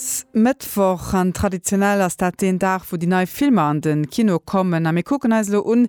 Haut Mëttwoch an traditionell ass dat deen Dag wou déi nei Filmer an de Kino kommen a mir kucken eis elo un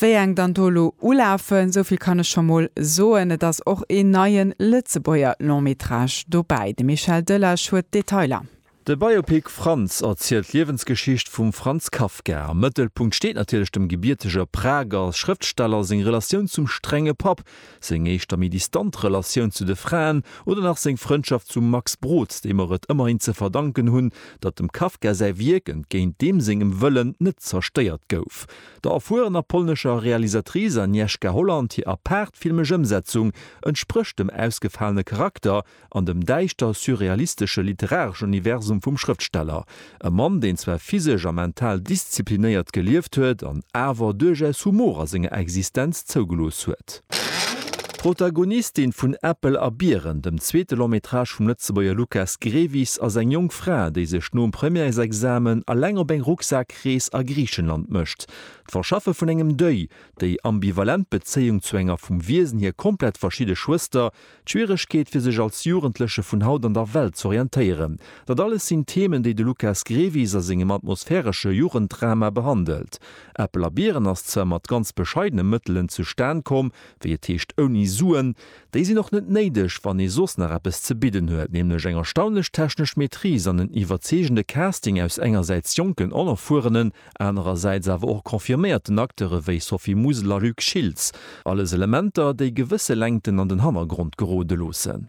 wéi eng dann do elo ulafen. Souvill kann ech scho mol soen, et ass och een neie Lëtzebuerger Long Métrage dobäi. De Michel Delage huet d'Detailer. De Biopic Franz erzielt d'Liewensgeschicht vum Franz Kafka. Am Mëttelpunkt steet natierlech dem gebierteger Prager Schrëftsteller seng Relatioun zum strenge Papp, seng éischter méi distant Relatioun zu de Fraen oder nach seng Frëndschaft zum Max Brod, deem mer et ëmmerhin ze verdanken hunn, datt dem Kafka säi Wierk, entgéint deem sengem Wëllen, net zerstéiert gouf. Der erfuerener polnescher Realisatrice Agnieszka Holland hir apaart filmesch Ëmsetzung entsprécht dem ausgefalene Charakter, an dem däischter surrealistesche literareschen Universum vum Schrëftsteller. E Mann, deen zwar physesch a mental disziplinéiert gelieft huet an awer duerchaus Humor a senger Existenz zougelooss huet. D'Protagonistin vun Äppel a Biren, dem zweete Long-métrage vum Lëtzebuerger Lukas Grevis, ass eng jonk Fra, déi sech nom Premièresexamen eleng op eng Rucksak-Rees a Griichenland mécht. D'Verschaffe vun engem Deuil, déi ambivalent Bezéiung zu enger vum Wiesen hier komplett verschidde Schwëster, D'Schwieregkeet fir sech als Jugendleche vun haut an der Welt z'orientéieren, dat alles sinn Themen, déi de Lukas Grevis a sengem atmosphäresche Jugenddrama behandelt. Äppel a Biren ass zwar mat ganz bescheidene Mëttelen zustan komm, wéi et heescht ouni Suen. Déi sinn och net néideg, wann ee soss nach eppes ze bidden huet, nämlech eng erstaunlech technesch Maîtrise an en iwwerzeegende Casting aus engersäits jonken, onerfuerenen, anerersäits awer och confirméierten Acteure wéi Sophie Musel a Luc Schiltz, alles Elementer, déi gewësse Längten an den Hannergrond gerode loossen.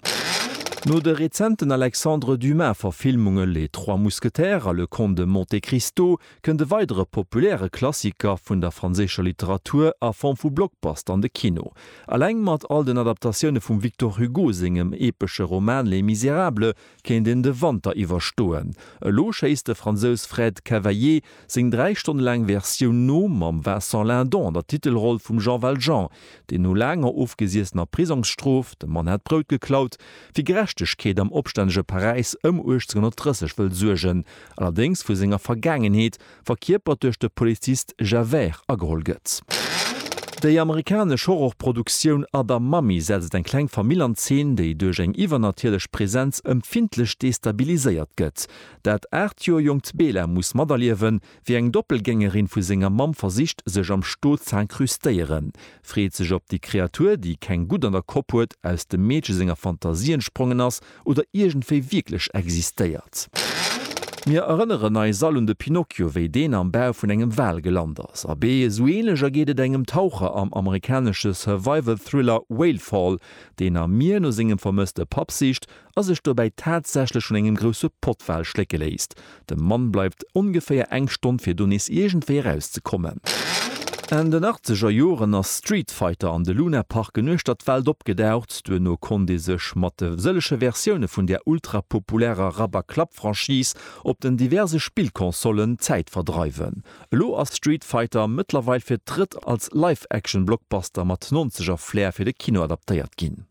No de rezenten Alexandre Dumas-Verfilmunge Les trois mousquetaires a Le Comte de Monte Cristo kënnt e weidere populäre Klassiker vun der franséischer Literatur a Form vu Blockbuster an de Kino. Eleng mat all den Adaptatioune vum Victor Hugo sengem epesche Roman Les Misérables Kéint een de Wanter iwwerstoen? Elo schéisst de Fransous Fred Cavaillé seng dräi Stonne laang Versioun no, mam Vincent Lindon an der Titelroll vum Jean Valjean, deen no laanger ofgesiessener Prisongsstrof, de Mann hat Brout geklaut, fir Gerechtegkeet am opstännege Paräis ëm 1830 wëll suergen, allerdéngs vu senger Vergaangenheet verkierpert duerch de Polizist Javert, ageholl gëtt. Déi amerikanesch Horrorproduktioun Other Mommy setzt eng kleng Famill an Zeen, déi duerch eng iwwernatierlech Presenz empfindlech destabiliséiert gëtt. Dat aacht Joer jonkt Bela muss materliewen, wéi eng Doppelgängerin vu senger Mamm versicht, sech am Sto z'incrustéieren. Freet sech op déi Kreatur, déi keng Gutt an der Kopp huet, aus dem Meedche senger Fantasie entsprongen ass, Oder iergendwéi wierklech existéiert. Mir erënneren eis all un de Pinocchio, wéi deen am Bau vun engem Wal gelant ass. Abee, esou änlech ergeet et engem Taucher am amerikanesche Survival-Thriller Whale Fall, deen am Mier no sengem vermësste Papp sicht a sech dobäi tatsächlech vun engem grousse Pottwal schlécke léisst. De Mann bleift ongeféier eng Stonn fir do nees iergendwéi eraus ze kommen. Enn den achtzeger Joren ass Street Fighter an de Luna Park en uechter d'Welt opgedaucht. Duerno konnt ee sech mat de sëllege Versioune vun där ultrapopulärer Rabberklapp-Franchise op den diverse Spillconsollen d'Zäit verdreiwen. Elo ass Street Fighter mëttlerweil fir d'drëtt als Live-Action-Blockbuster mat Nonzeger-Flair fir de Kino adaptéiert ginn.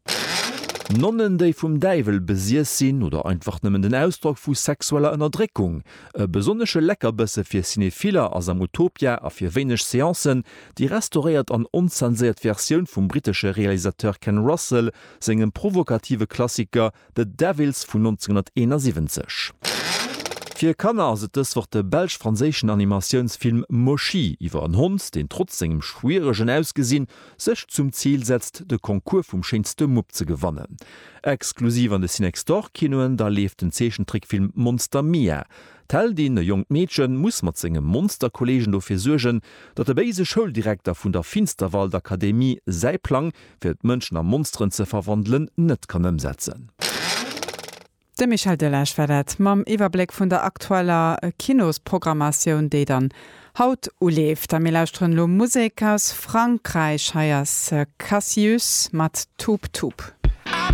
Nonnen, déi vum Däiwel besiess sinn oder einfach nëmmen den Ausdrock vu sexueller Ënnerdréckung. E besonnesche Leckerbësse fir Cinephiller ass am Utopia a fir wéineg Seancen déi restauréiert an onzenséiert Versioun vum brittesche Realisateur Ken Russell sengem provokative Klassiker The Devils vun 1971. Fir Kanner ass et dës Woch de belsch-franséischen Animatiounsfilm Moshi iwwer en Hond, deen trotz sengem schwieregen Ausgesinn sech zum Zil setzt, de Concours vum schéinste Mupp ze gewannen. Exklusiv an de Cinextorkinoen da leeft den Zeechentrickfilm Monster Mia. D'Heldin, e jonkt Meedchen, muss mat senge Monsterkolleegen dofir suergen, datt de béise Schouldirekter vun der Finsterwaldakademie säi Plang fir d'Mënschen a Monsteren ze verwandelen, net kann ëmsetzen. De Michel Delage war dat mam Iwwerbléck vun der aktueller Kinosprogrammatioun, déi dann haut uleeft. A mir lauschteren elo Musek aus Frankräich. Hei ass Cassius mat Tup Tup.